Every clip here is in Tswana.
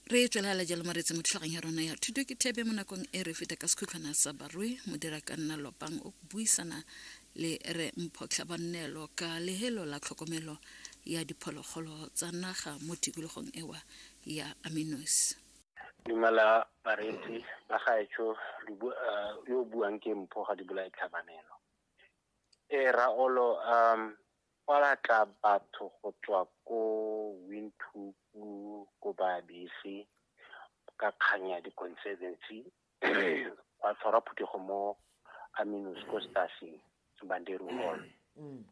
re tswelela jalo maretse mo tlhagong ya rona ya thuto ke thebe mo nakong e re feta ka sekhutlhwana sa barui modira ka nna lopang o buisana le re mphotlha bannelo ka lehelo la tlhokomelo ya diphologolo tsa naga mo tikologong ewa ya aminos dumela bareetsi ba gaetsho uh, yo buang ke mpho ga di bolae tlhabanelo e raolo um Ba batla batho go tswa ko Windhoek ko Babese ka kgang ya di-conservancy gwa tshwarwa phuthego mo Aminus ko Stasi Banderu Hall. Um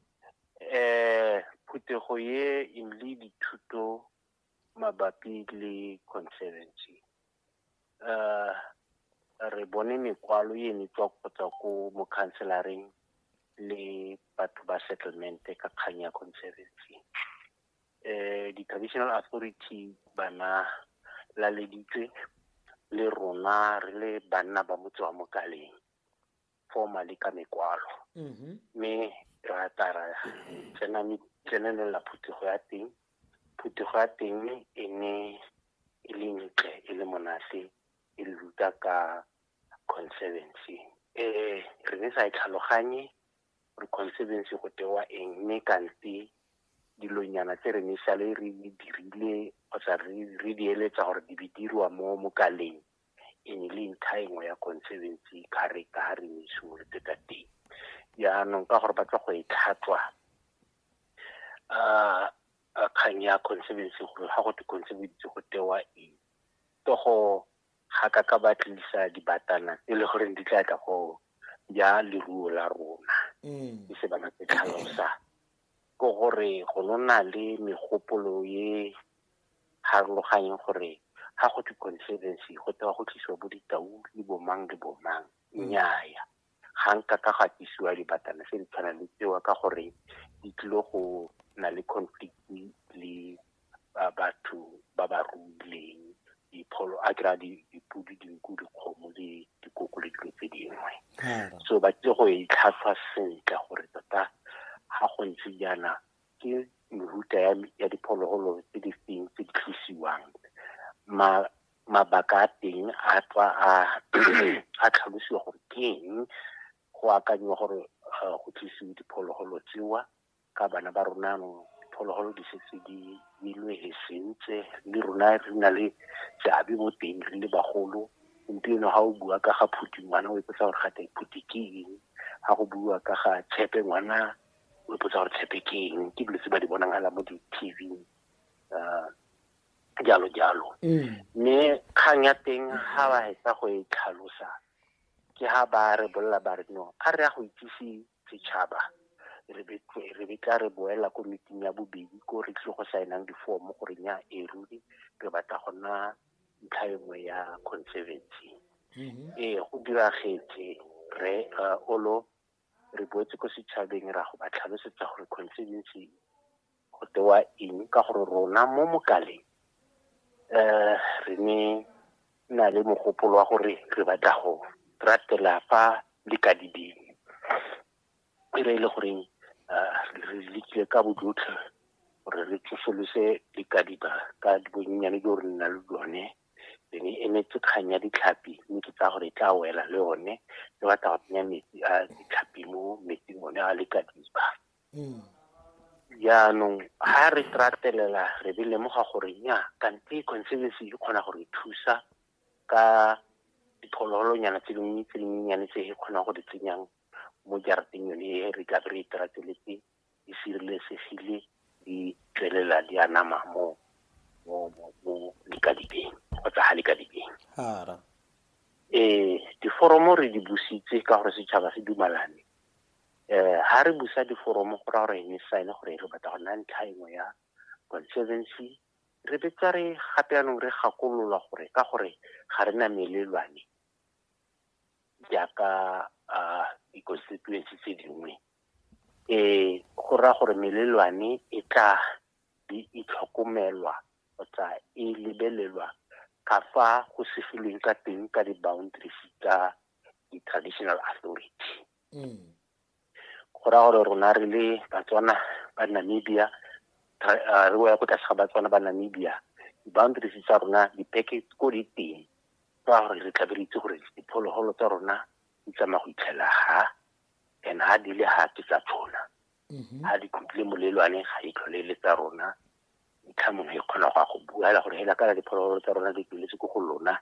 phuthego e e nnile dithuto mabapi le conservancy. uh, re bone mekwalo e ne tswa kgotsa ko mokhanselareng le batho ba settlement ka kgang ya conservancy um di-traditional authority bana laleditswe le rona re le banna ba motse wa mokaleng formally ka mekwalo mm-hmm. mme ra tla ra tsena tsenelela phuthego ya teng phuthego ya teng e ne e le ntle e le monate e le ruta ka conservancy um re ne sa e tlhaloganye gore conservancy go tewa eng mme kante dilonyana tse re ne sale re dirile kgotsa re di eletsa gore di be dirwa mo mokaleng e ne le ntlha engwe ya conservancy character ha re ne e simolotse ka teng jaanong ka gore ba tla go e tlhatswa um kgang ya conservancy gore ga go te conservancy go tewa eng ke go ga ka ka ba tlisa dibatana e le goreng di tla tla go ja leruo la rona e se bana ke tlhalosa ke gore go nona le megopolo e harologanyeng gore ga go twe conservancy go tewa go tlisiwa bo ditau le bomang le bomang nnyaya ga nka ka ga tlisiwa dibatana se di tshwana le tsewa ka gore di tlile go na le conflict le ba batho ba ba ruileng dipholo a kry-a dipodi dinku dikgomo le dikoko le dilo tse dingwe so ba tle go e tlhatlhwa sentle gore tota ga go ntse jaana ke mehuta ya diphologolo tse di feng tse di tlosiwang mabaka a teng a tswa a tlhalosiwa gore ke eng go akanyiwa gore go tlisiwe diphologolo tsewa ka bana ba rona anong diphologolo di setse di milwe he sentse le rona re na le seabe mo teng re le bagolo gompieno ga o bua ka ga phuti ngwana o ipotsa gore gate phuti ke eng ga go bua ka ga tshepe ngwana o ipotsa gore tshepe ke eng ke dilo tse ba di bonang ala mo di-tv um jalo jalo mme kgang ya teng ga ba hetsa go e tlhalosa ke ha ba re bolela ba re no a re ya go itsise setšhaba re be re be tla re boela ko meeting ya bobedi ko re tlile go saenang difomo gore nya e ruri re batla go nna ntlha e nngwe ya conservancy mm-hmm. ee go diragetse re uh, olo re boetse ko setšhabeng ra go ba tlhalosetsa gore conservancy go tewa eng ka gore rona mo mokaleng um re ne na le mogopolo wa gore re batla go ratela fa le ka dibeng e re e le goreng re lekile ka bojotlhe gore re tsosolose dikadiba ka bonnyane jo re nna le lone re ne emetse kgang ya ditlhapi mme ke tsaya gore e tla wela le one re batla go tsenya metsi a ditlhapi mo metsing one a lekadiba mm. jaanong ga re ratelela re be lemoga gore nya kante conservancy e kgona gore thusa ka diphologolonyana tse dingwe tse dinyenyane tse e kgonang go di tsenyang mo jarateng yone e re tla re iterateletse e sireletsegile di tswelela di anama mo mo likadibeng kgotsa ga likadibeng ee diforomo re di busitse ka gore setšhaba se dumalane um ha re busa diforomo go raya gore ne sign gore re batla go nna ntlha engwe ya conservancy re betsa re gape yanong re gakololwa gore ka gore ga re na melelwane jaaka um di-constituency tse dingwe um go raya gore melelwane e tla di itlhokomelwa kgotsa e lebelelwa ka fa go segilweng ka teng ka di-boundaries tsa di-traditional authority mm. go raya gore rona re le batswana ba namibia uh, re ya ko tlase ga batswana ba namibia di-boundaries tsa rona dipeke ko di teng ka gore re tlabe re itse gore diphologolo tsa rona di tsamaya go itlhela ha and ha di le ha ke tsa tshona ha mm-hmm. di tlhotlile molelwane ga di tlhole le tsa rona ntlha mongwe e kgona go ya go bua fela gore hela kana diphologolo tsa rona di tsweletse ko go lona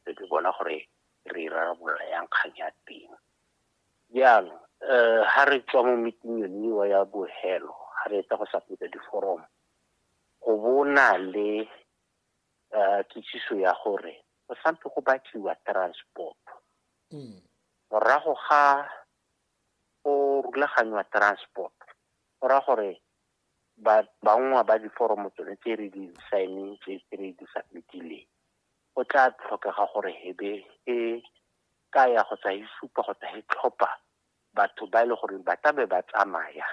re ke bona gore re rarabolola yang kgang ya teng Jaanong um ha re tswa mo meeting yone eo ya bohelo ha re etsa go submita diforomo go bona le um kitsiso ya gore go sampe go batliwa transport morago ga go rulaganywa transport go raya gore bangwe ba diforomo tsone tse re di signeng tse re di submitileng go tla tlhokega gore hebe e ka ya go tsa e supa go tsa e tlhopha batho ba e le gore ba tlabe ba tsamaya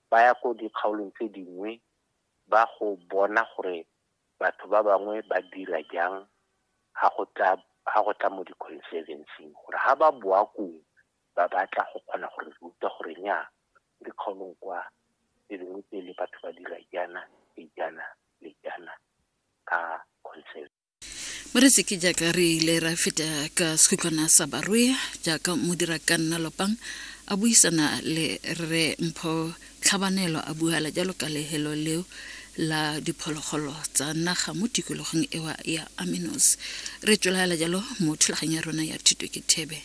ba ya ko dikgaolong tse dingwe ba go bona gore batho ba bangwe ba dira jang ha go tla ha go tla mo di-conservancing gore ha ba boa kong ba batla go kgona gore ruta gore nya dikgaolong kwa tse dingwe tse le batho ba dira jaana le jaana le jaana ka conservation moreseke jaaka re ile ra feta ka sekhutlwana sa barwe jaaka modira ka nna lopang a buisana le re mpho tlhabanelo a buala jalo ka lehelo leo la diphologolo tsa naga mo tikologong ewa ya aminos re tswelagela jalo mo thulaganyo ya rona ya thuto ke thebe